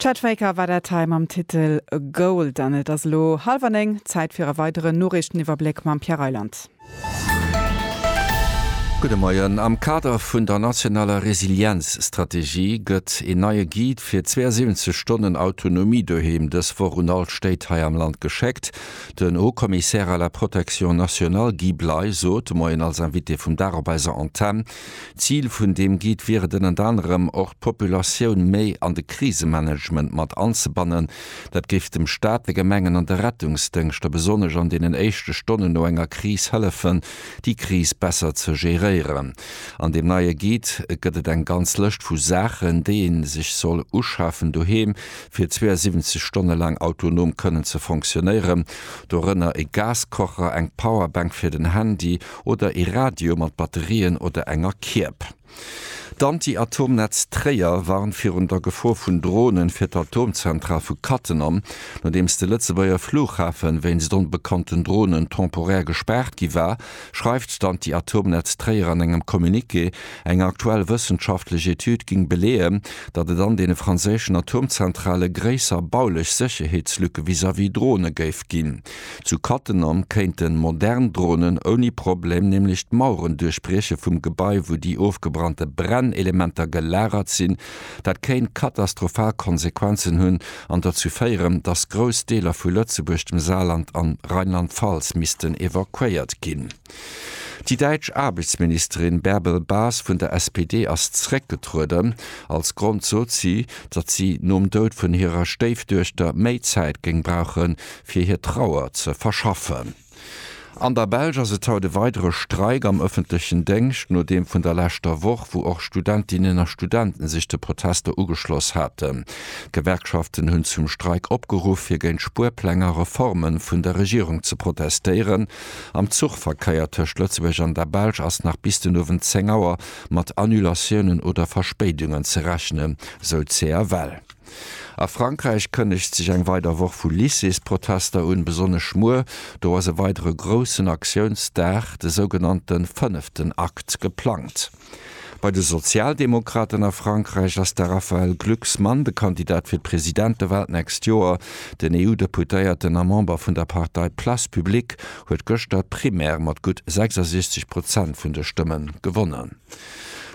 Chet Faker war dat hei mam Titel Gold. An et ass elo hallwer néng, Zäit fir e weideren Noriichteniwwerbléck mam Pierre Reyland. Gudde Moien. Am Kader vun der nationaler Resilienzstrategie gëtt een neie Guide fir 72 Stonnen Autonomie doheem dës Woch un all d'Stéit hei am Land geschéckt. Den Haut-Commissaire à la protection nationale Guy Bley sot de Moien als Invité vum Dag op eiser Antenn, Zil vun deem Guide wier et ënnert anerem och d'Populatioun méi an de Krisemanagement mat anzebannen. Dat géif dem Staat, de Gemengen an de Rettungsdëngschter besonnesch an deenen éischte Stonnen no enger Kris hëllefen, déi Kris besser ze geréieren. An deem neie Guide gëtt et eng ganz Lëscht vu Saachen, déi ee sech soll uschafen doheem, fir 72 Stonne laang autonom kënnen ze fonctionéieren. Dorënner e Gaskocher, eng Powerbank fir den Handy, oder ee Radio mat Batterien oder enger Kierb. D'Anti-Atom-Netz Tréier warnt virun der Gefor vun Dronen fir d'Atomzentral vu Cattenom. Nodeems de Lëtzebuerger Flughafen wéinst onbekannten Dronen temporär gespaart gi war, schreift d'Anti-Atom-Netz Tréier an engem Communiqué, eng aktuell wëssenschaftlech Etüd ging beleeën, datt et an deene franséischen Atomzentrale gréisser baulech Sécherheetslücke vis-à-vis Drone géif ginn. Zu Cattenom kéinten modern Dronen ouni Problem nämlech d'Maueren duerchbrieche vum Gebai wou déi ofgebrannte Brennelementer gelagert sinn. Dat kéint katastrophal Konsequenzen hunn an derzou féieren, datt grouss Deeler vu Lëtzebuerg, dem Saarland an Rheinland-Pfalz missten evakuéiert ginn. Déi däitsch Aarbechtsministerin Bärbel Bas vun der SPD ass zeréckgetrueden. Als Grond sot si, datt si nom Doud vun hirer Stéifduechter méi Zäit géing brauche fir hir Trauer ze verschaffen. An der Belsch ass et haut e weidere Streik am ëffentlechen Déngscht no deem vun der leschter Woch, wou och Studentinnen a Studenten sech de Protester ugeschloss haten. D'Gewerkschaften hunn zum Streik opgeruff, fir géint Spuerpläng a Reforme vun der Regierung ze protestéieren. Am Zuchverkeier tëscht Lëtzebuerg an der Belsch ass nach bis den Owend 10 Auer mat Annulatiounen oder Verspéidungen ze rechnen, sou d'CFL. A Frankräich kënnegt sech eng weider Woch vu Lycées-Protester un, besonnesch muer. Do ass e weidere groussen Aktiounsdag, de sougenannte fënneften Akt, geplangt. Bei de Sozialdemokraten a Frankräich ass de Raphaël Glucksmann de Kandidat fir d'Presidentewal d'nächst Joer. Den EU-Deputéierten a Member vun der Partei Place publique huet gëschter d'Primaire mat gutt 66 Prozent vun de Stëmme gewonnen.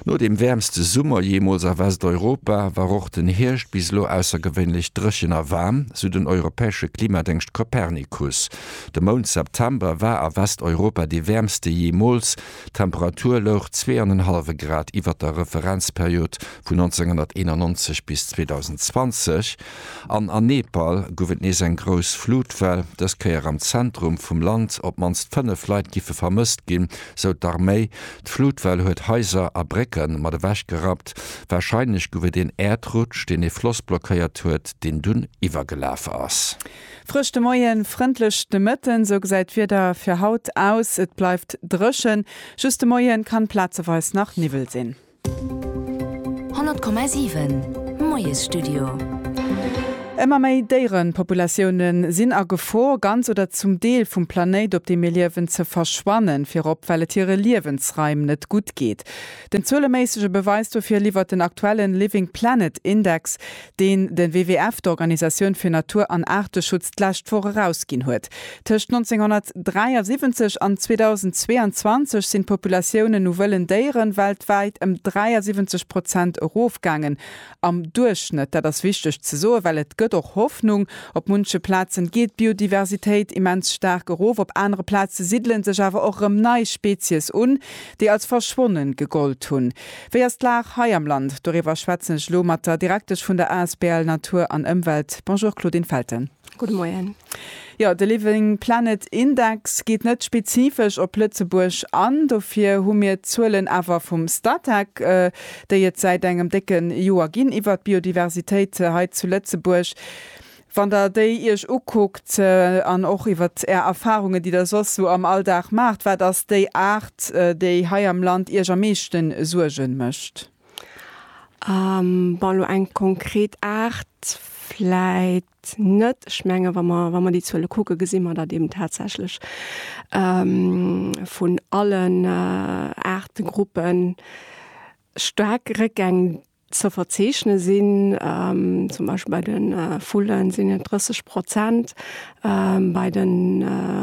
No dem wäermste Summer jeemools a Westeuropa war och den Hierscht bis elo aussergewéinlech dréchen a waarm, sou den europäesche Klimadéngscht Copernicus. De Mount September war a Westeuropa dee wäermste jeemools. D'Temperatur louch zwee an en hallwe Grad iwwert der Referenzperiod vun 1991 bis 2020, an a Nepal gouf et nees eng grouss Flutwell, dës Kéier am Zentrum vum Land. Op d'mannst fënnef Leit giffe vermësst ginn, sou d'Arméi. D'Flutwell huet Haiser a Brécke mat ewechgerappt. Warscheinlech gouf et een Äerdrutsch, deen ee Floss blockéiert huet, deen dunn iwwergelaf ass. Frësch de Moien, frëndlech de Mëtten, sou gesäit d'Wieder fir haut aus. Et bleift dréchen, just de Moie kann plazeweis nach Niwwel sinn. 100,7 Moiesstudio. Ëmmer méi Déierepopulatioune sinn a Gefor, ganz oder zum Deel vum Planéit, op deem mir liewen, ze verschwannen, virop well et hire Liewensraim net gutt geet. Den zueleméissege Beweis dofir liwwert den aktuellen Living Planet Index. deen de WWF, d'Organisatioun fir Natur an Aarteschutz, d'lescht Woch erausginn huet. Tëscht 1973 an 2022 sinn d'Populatiounen u wëllen Déiere weltwäit ëm 73 Prozent erofgaangen am Duerchschnëtt. Dat ass wichteg ze soen, well et gëtt och Hoffnung. Op munche Plazen geet d'Biodiversitéit immens staark erof, op anere Plaze siddele sech awer och erëm nei Spezies un, déi als verschwonnen gegollt hunn. Wéi ass d'Lag hei am Land? Doriwwer schwätzen ech elo mat der Direktesch vun der asbl Natur an Ëmwelt. Bonjour Claudine Felten. Gudde Moien. Jo, de Living Planet Index geet net spezifesch op Lëtzebuerg an, dofir hu mir d'Zuelen awer vum Statec, déi et säit engem décke Joer ginn, iwwert d'Biodiversitéit hei zu Lëtzebuerg. Wann Der déi Iech ukuckt an och iwwert Är Erfahrungen, déi Der soss sou am Alldag maacht, wat ass déi Aart, déi hei am Land Iech am meeschten Suergen mécht? Bon, elo eng konkret Aart vläit net. Ech mengen, wa mer, wa mer déi Zuele kucken, gesi mer, datt eben tatsächlech vun allen Aartegruppen staark Réckgäng Ze verzeechne sinn. Zum Beispill bei de Vullen sinn et 30 Prozent, bei de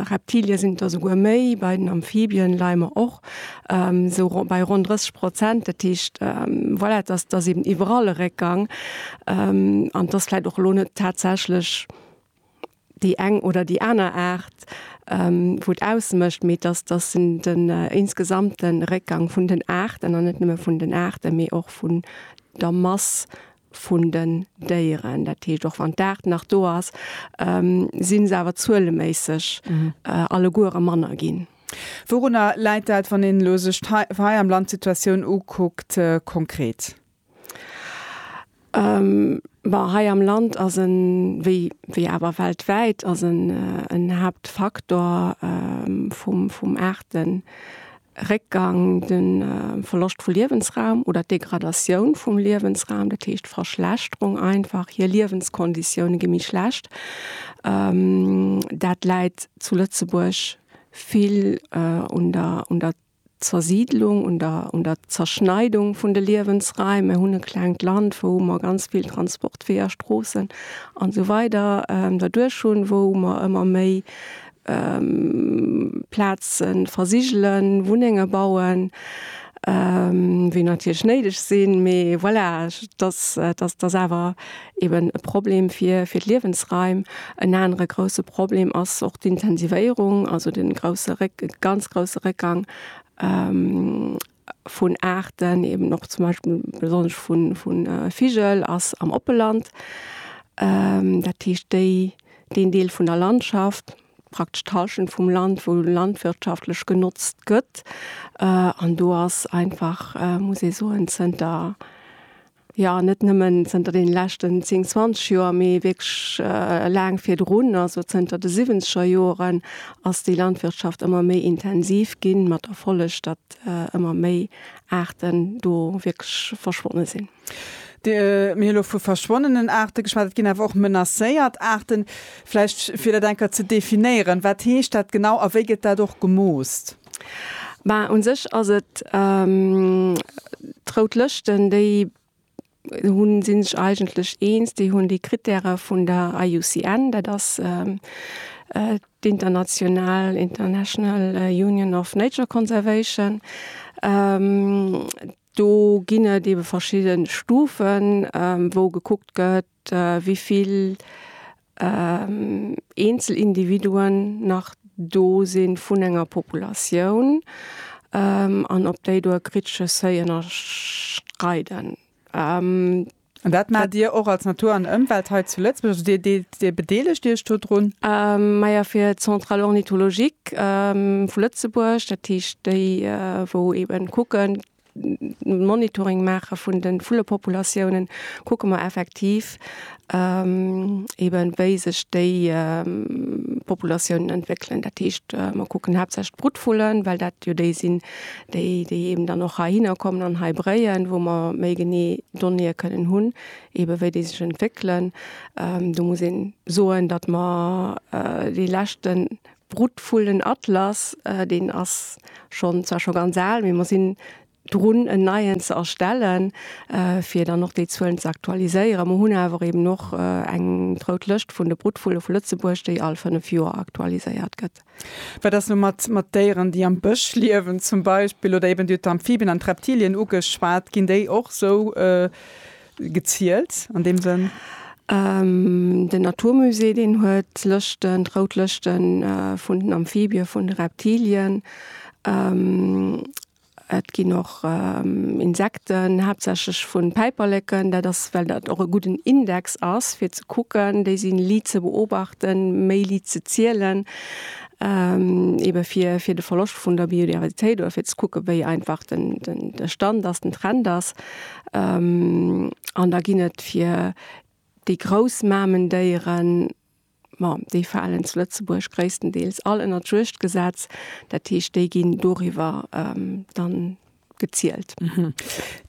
Reptilie sinn et der souguer méi, bei den Amphibien leie mer och sou ronn bei ronn 30 Prozent. Dat heescht, voilà, et ass, et ass eben iwwerall e Réckgang an et ass vläicht och elo net tatsächlech, déi eng oder déi aner Aart, wou et ausmécht, mee dass dass en den insgesamte Réckgang vun den Aarten, an net nëmme vun den Aarten, mee och vun der Mass vun den Déieren, dat heescht, och wann d'Aart nach do ass, si se awer zueleméisseg alleguere manner ginn. Wourunner läit dat, wann een elo sech hei am Land d'Situatioun ukuckt konkret? Bon, hei am Land ass e, wéi, wéi awer weltwäit, ass e, en Haaptfaktor vum, vum Aarteréckgang de Verloscht vu Liewensraum oder d'Degradatioun vum Liewensraum, dat heescht d'Verschlechterung einfach. Hir Liewenskonditioune gi méi schlecht. Dat läit zu Lëtzebuerg vill un der, un der Zersiidlung, un der, un der Zerschneidung vun de Liewensraim. Mer hunn e klengt Land, wou mer ganz vill Transportweeër, Stroossen an esou weider derduerch hunn, wou mer ëmmer méi Plaze versigelen, Wunnenge bauen, wéi natierlech néideg sinn, mee voilà, dass, dass, dass awer. eben e Problem fir d'Liewensraim. En anere grousse Problem ass och d'Intensivéierung, also de grousse Réck, de ganz grousse Réckgang vun Aarten, eben och zum Beispill besonnesch vu Vigel ass am Oppeland. Dat heescht déi, deen Deel vun der Landschaft, praktesch d'Hallschent vum Land, wou landwirtschaftlech genotzt gëtt. An do ass einfach, muss ee soen, zënter Jo, net nëmmen zënter den leschten 10, 20 Joer, mee wierklech laang virdrun, also zënter de siwwenzeger Joren, ass déi Landwirtschaft ëmmer méi intensiv ginn, mat Erfolleg, datt ëmmer méi Aarten do wierklech verschwonne sinn. Mir hu elo vu verschwonnenen Aarte geschwat. Et ginn awer och menacéiert Aarten. Vläicht fir dat eng Kéier ze definéieren, Wat heescht dat genau a wéi gëtt dat och gemoost? Mä un sech ass et d'Rout Lëschten, déi hunn, si sech eigentlech eens, déi hunn déi Krittäre vun der IUCN, dat ass d'international, International Union of Nature Conservation. Do ginn et ebe verschidde Stufen, wou gekuckt gëtt, wéi vill eenzel Individuen nach do sinn vun enger Populatioun, an ob déi do e kritesche Seuil ënnerschreiden. An dat maacht Dir och als Natur an Ëmwelt hei zu Lëtzebuerg, also Dir deelt, Dir bedeelegt Iech do drun? Maja, fir d'Centrale ornithologique vu Lëtzebuerg, dat heescht déi wou eeben kucken, Monitoring maache vun de Vullpopulatiounen, kucke mer effektiv eeben, wéi sech déi Populatiounen entwéckelen. Dat heescht, mer kucken haaptsächlech d'Brutvullen, well dat jo déi sinn, déi, déi eeben dann och heihinner kommen an hei bréien, wou mer méi genee Donnéeë kënnen hunn, eebe wéi déi sech entwéckelen. Do muss een soen, datt mer déi leschten D'Brutvullen Atlas, deen ass schonn, zwar scho ganz al, mee mer sinn drun en neien ze erstellen, fir dann och déi Zuelen ze aktualiséieren. Mer hunn awer eben och eng rout Lëscht vun de Brutvulle vu Lëtzebuerg, déi all fënnef Joer aktualiséiert gëtt. Wat ass elo mat mat Déieren, déi am Bësch liewen zum Beispill oder eben, Dir hutt d'Amphibien an d'Reptilien ugeschwat, ginn déi och esou gezielt an deem Sënn? Den Naturmusée, deen huet Lëschten, d'rout Lëschte vun den Amphibien, vun de Reptilien. Et ginn och Insekten, haaptsächlech vu Päiperleken. Dat ass, well dat och e gudden Index ass, fir ze kucken. Déi si liit ze beobachten, méi liit ze zielen, ebe fir, fir de Verloscht vun der Biodiversitéit oder fir ze kucke wéi einfach den, den, de Stand ass, den Trend ass. An da ginn et fir déi grouss Mamendéieren, ma déi falen zu Lëtzebuerg gréisstendeels all ënnert d'Juegdgesetz, dat heescht, déi ginn doriwwer dann gezielt.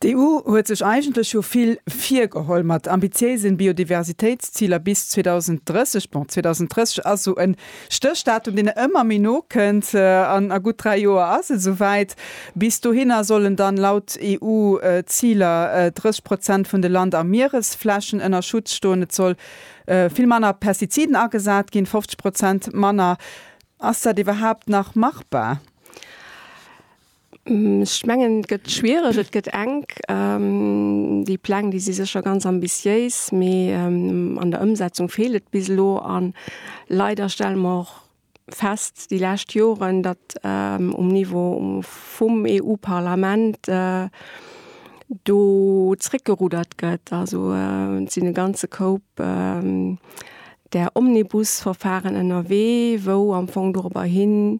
D'EU huet sech eigentlech jo vill virgeholl mat ambitiéisen Biodiversitéitsziler bis 2030. Bon, 2030 ass esou en Stéchdatum, deen ëmmer méi no kënnt. An a gutt dräi Joer ass et esou wäit. Bis dohinner sollen dann laut EU-Ziler 30 Prozent vun de Land a Mieresflächen ënner Schutz stoen. Et soll vill manner Pestiziden agesat ginn, 50 Prozent manner. Ass dat iwwerhaapt nach machbar? Ech mengen et gëtt schwiereg, et gëtt enk. Déi Pläng, déi si sécher ganz ambitiéis, mee an der Ëmsetzung feelt et bis elo. A leider stelle mer och fest déi lescht Joren, datt um Niveau vum EU-Parlament do zréckgerudert gëtt. Also et sinn e ganze Koup där Omnibusverfaren ënnerwee, wou am Fong dorobber hin.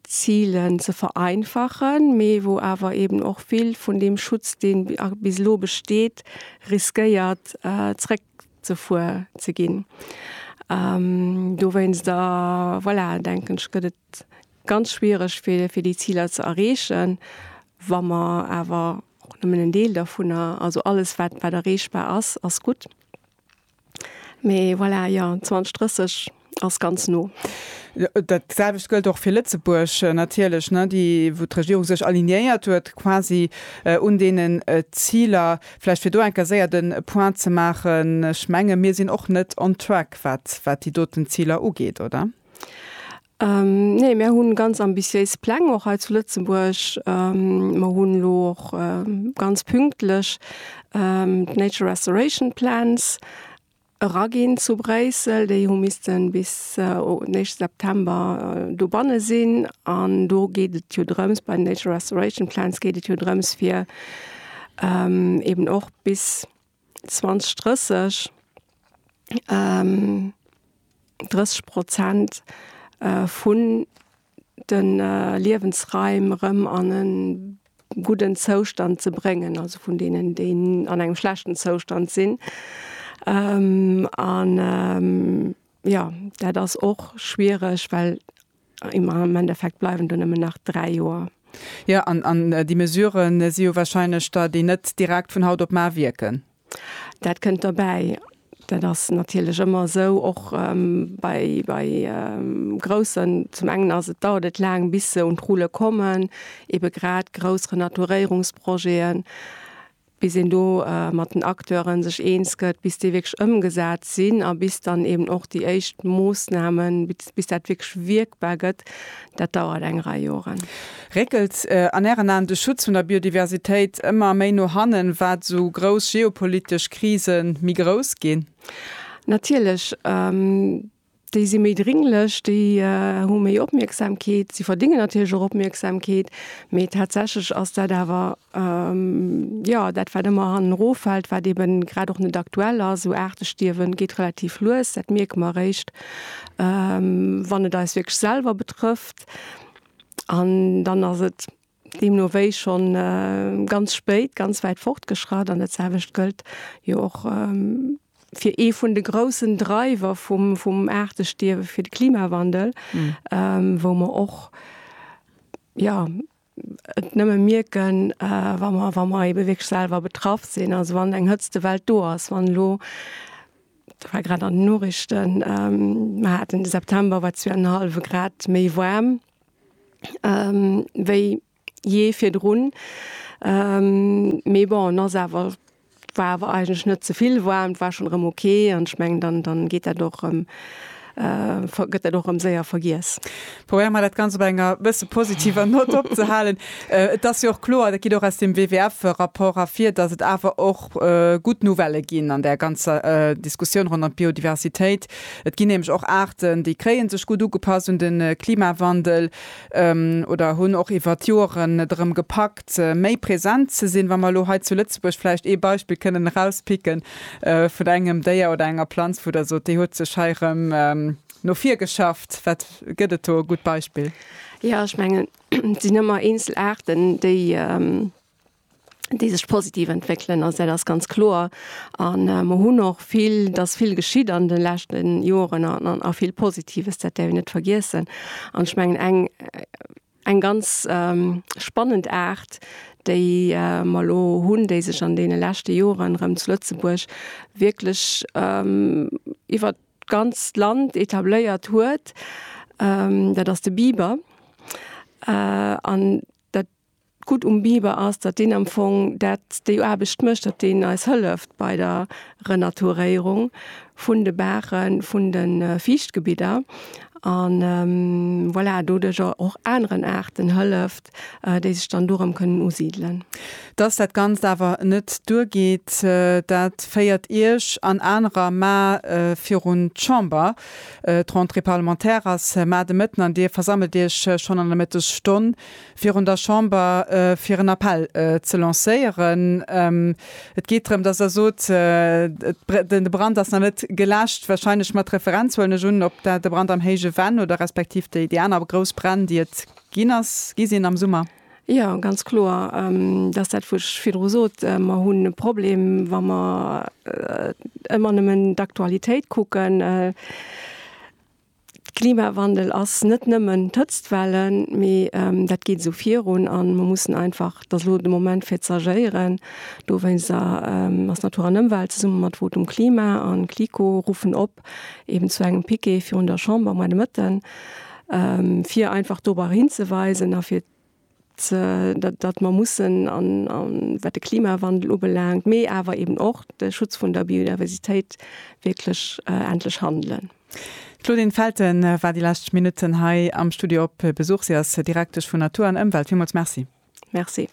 Zilen ze vereinfachen, mee wou awer eeben och vill vun deem Schutz, deen bis elo besteet, riskéiert zréckzefuer ze ginn. Dowéinster, voilà, denken ech, gëtt et ganz schwiereg fir fir déi Ziler ze erreechen, wa mer awer och nëmmen en Deel dervunner, also alles wat wat erreechbar ass, ass gutt. Mee voilà, jo, 2030 ass ganz no. Dat selwecht gëllt och fir Lëtzebuerg natierlech, déi, wou d'Regierung sech alignéiert huet quasi un deenen Ziler. Vläicht fir do eng Kéier séier de Point ze maachen, ech menge mir sinn och net on track, wat déi doten Ziler ugeet, oder? Nee, mir hunn ganz ambitiéis Pläng och hei zu Lëtzebuerg. Mer hunn elo och ganz pünktlech d'Nature Restoration Plans eraginn zu Bréissel. Déi hu missten bis den éischte September dobanne sinn. An do geet et jo drëms, bei den Nature Restoration Plans geet et jo drëms fir eeben och bis 20, 30, 30 Prozent vun de Liewensraim erëm an e gudden Zoustand ze bréngen, also vun deenen, déi an engem schlechten Zoustand sinn. An, jo, dat ass och schwiereg, well Am Endeffekt bleiwen do nëmmen nach dräi Joer. Jo, an déi Mesurë si jo warscheinlech der, déi net direkt vun haut op mar wierken. Dat kënnt derbäi. Dat ass natierlech ëmmer esou, och bei groussen. Zum engen ass et, dauert et laang, bis se un d'Rulle kommen, ebe grad grouss Renaturéierungsprojeten. bis een do mat den Acteure sech eens gëtt, bis déi wierklech ëmgesat sinn a bis dann eben och déi éischt Moossnamen, bis dat wierklech wierkbar gëtt, dat dauert eng Rei Joren. Réckelt an Ären Aen de Schutz vun der Biodiversitéit ëmmer méi no hannen, wat esou grouss geopolitesch Krise méi grouss ginn? Natierlech. Déi si méi dringlech, déi hu méi Opmierksamkeet. Si verdéngen natierlech och Opmierksamkeet, mee tatsächlech ass dat awer, jo, dat wat ëmmer hanneroffält, wat eben grad och net aktuell ass. Esou Aartestierwen geet relativ lues, dat mierke mer eréischt, wann et eis wierklech selwer betrëfft. An dann ass et Deemno wéi schonn ganz spéit ganz wäit fortgeschratt. An dat selwecht gëllt jo och fir ee vun de groussen Dreiwer vum, vum Aartestierwe, fir de Klimawandel, wou mer och, jo, et nëmme mierken, wa mer, wa mer ebe wierklech selwer betraff sinn. Also wann eng Hëtztewell do ass, wann elo, dat war grad an den Noriichten, mer haten de September war zwee an en hallwe Grad méi waarm, wéi jee virdrun. Mee bon, ass awer, war awer eigentlech net ze vill waarm, war schonn erëm ok. An ech mengen, dann, dann geet dat och erëm, gëtt dat och erëm séier vergiess. Probéiere mer dat Ganzt op enger e bësse positiver Nott opzehalen. Et ass jo och kloer, dat geet och aus dem WWF-Rapport ervir, datt et awer och gutt Nouvellë ginn an där ganzer Diskussioun ronderëm d'Biodiversitéit. Et ginn nämlech och Aarten, déi kréie sech gutt ugepasst un de Klimawandel oder hunn och iwwer d'Joren et erëm gepackt, méi present ze sinn. Wa mer elo hei zu Lëtzebuerg vläicht ee Beispill kënnen erauspicken vun engem Déier oder enger Planz, wou Der sot, déi huet sech hei erëm no vir geschafft. Wat gëtt et do e gutt Beispill? Jo, ech mengen, et sinn ëmmer eenzel Aarten, déi déi sech positiv entwéckelen. Also dat ass ganz kloer. A mer hunn och vill, et ass vill geschitt an de leschten Joren an a vill Positives, dat däerf een net vergiessen. An ech mengen eng, eng ganz spannend Aart, déi mer elo hunn, déi sech an deene leschte Joren erëm zu Lëtzebuerg wierklech iwwert d'ganzt Land etabléiert huet, dat ass de Biber. An dat. D'Gutt um Biber ass, datt deen am Fong dat, déi Aarbecht mécht, datt deen eis hëlleft bei der Renaturéierung vun de Baachen, vun de Fiichtgebidder a voilà, doduerch och aneren Aarten hëlleft, déi sech dann dorëm kënnen usidelen. Datt dat Ganzt awer net duergeet, dat féiert Iech an anerer Mä virun d'Chamber. D'Rentrée parlementaire ass Mä de Mëtten an Dir versammelt Iech schonn an der Mëttesstonn. virun der Chamber fir en Appell ze lancéieren. Et geet drëm, dass Der sot, de Brand ass nach net geläscht, wahrscheinlech mat Referenz, huelen ech un, op de Brand am Héije Venn oder respektiv déi aner grouss Bränn, déi et ginn ass, gi sinn am Summer. Jo, ganz kloer. Dat ass dat, wou ech virdru sot. Mer hunn e Problem, wa mer ëmmer nëmmen d'Aktualitéit kucken. Klimawandel ass net nëmmen d'Hëtztwellen, mee dat geet esou virun a mer mussen einfach, et ass elo de Moment fir ze agéieren. Dowéinst ass Natur an Ëmwelt zesumme mat Votum Klima a KLIKO ruffen op eben zu engem Piquet virun der Chamber, moie de Mëtten, fir einfach dorobber hinzeweisen a fir datt mer mussen an wat de Klimawandel ubelaangt, mee awer eben och de Schutz vun der Biodiversitéit wierklech endlech handelen. D'Claudine Felten war déi lescht Minutten hei am Studio op Besuch. Si ass Direktesch vun Natur an Ëmwelt. Villmools Merci. Merci.